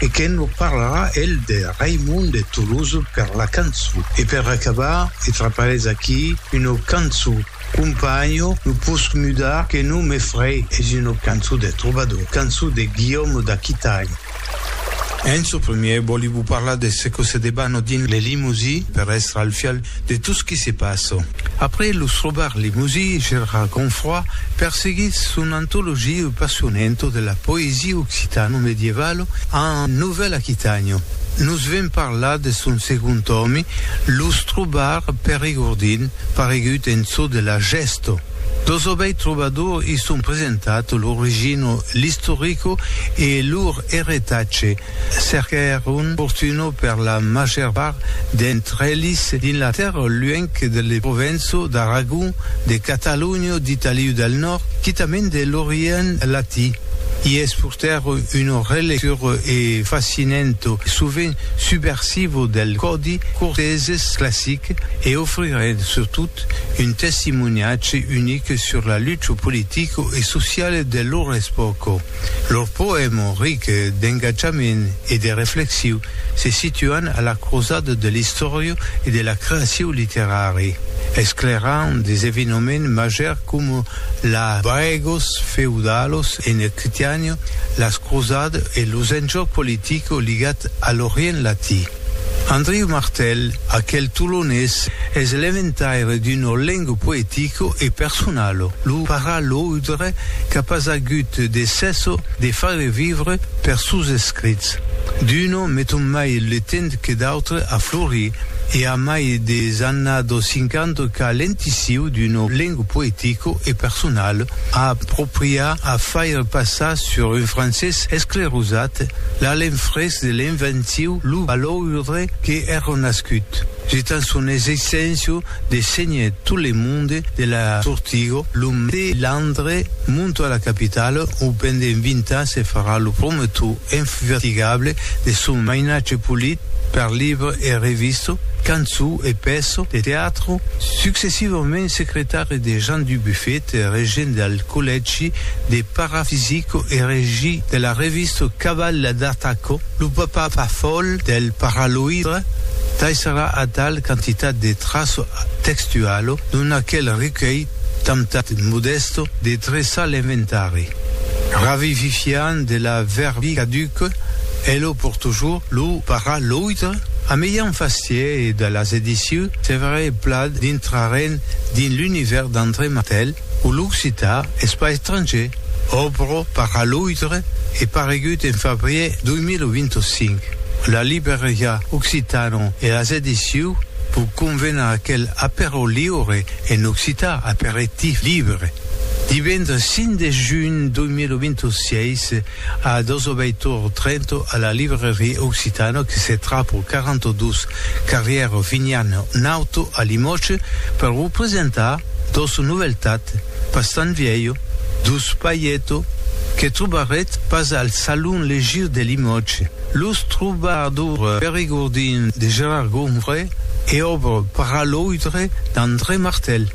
e que nos parlarà el de Raimond de Toulouse per la cançon. E per acabar, e traparés aquí, una cançon companho no posc mudar que non me frei, es una cançon de trobador, cançon de Guillaume d'Aquitaine. En ço premier, vòli vos parlar de ce que se debana dins le Limousin per èstre al fial De tot ce qui se passe. Après Lo Strobar Limousi, Gérard Gonfroy perseguís son antologia O Passionento della poesia occitano-medievala en Novèl Aquitània. Nos ven parlar de son segond tòmi, Lo Strobar Perigordin, paregut en çò de la gèsta. Dos obèits trobadors i son presentats, l'origina, l'istorico e lor eretatge, Cerquèr un fortuno per la màger part d'entre elis dins la tèrra luènh de le Provenço d'Aragon, de Catalonha, d'Italiu del Nòrd, quitament de l'Orient Latí. I es purtèr una relectura e fascinento, sovent subversivo del còdi corteses classic e ofrirent surtot un testimoniatge unic sur la lucha politica e sociala de lor espòca. Lor poèma ric d'engatjament e de reflexiu se situan a la crosada de l'istòria e de la creaciu literari, esclairant des evenoments màgers coma la Baegos feudalos en Aquitània, las crosades e los enjòcs politics ligats a l'Orient Latí. Andriu Martèl, aquel tolonés, es l'eventaire d'un olengo poetico e personalo, lo paraloudre qu'a pas agut de cèsso de faire vivre per sos escrits. D'uno meton mai le temps que d'autre a florir e a mai de s'annado sincando qu'a l'entissiu d'un olengo poetico e personal a apropriar a faire passar sur un francés esclerosat l'alenfrés de invenciu lo baloure que èrò nascut, jetant son exeissenciu de senher tot le monde de la Sortigo, lo melandre monto a la capitala ou pendent vint ans se farà lo promotor infatigable de son mainatge polit per libre e revista, cançon e pèça de teatre, successivament secretari de Jean Dubuffet, regent del. Collègi de parafisico e regi de la revista Cabala d'Ataco, lo papa pafòl del paraloidre taissarà atal quantitat de traço textualo dont aquel recuelh temptat modèsto de dreçar l'inventari, ravivifiant de la verbi caduca e lo por toujours lo paraloidre a mejan fastièr e de las edicions Severe e Plat dintrarèn dins l'univèrs d'André Mathel, O l'occitan es pas estranger, òbro per a l'autre e paregut en fabrier 2025. La libreriá Occitano e las ediciu vos convena aquel Aperò liure en occitan, Aperitif libre, divendres 5 de junh 2026, A dos obeitor Trento a la librairie Occitano que se trap au 42 carrière Vignan Nauto a Limòtge per vos presentar dos noveltat pas tan vièlho, dos pailleto que trobarèt pas al Salon Legir de Limòtge, Los trobadors perigordins de Gérard Gombrey e Obre paraloidre d'André Martel.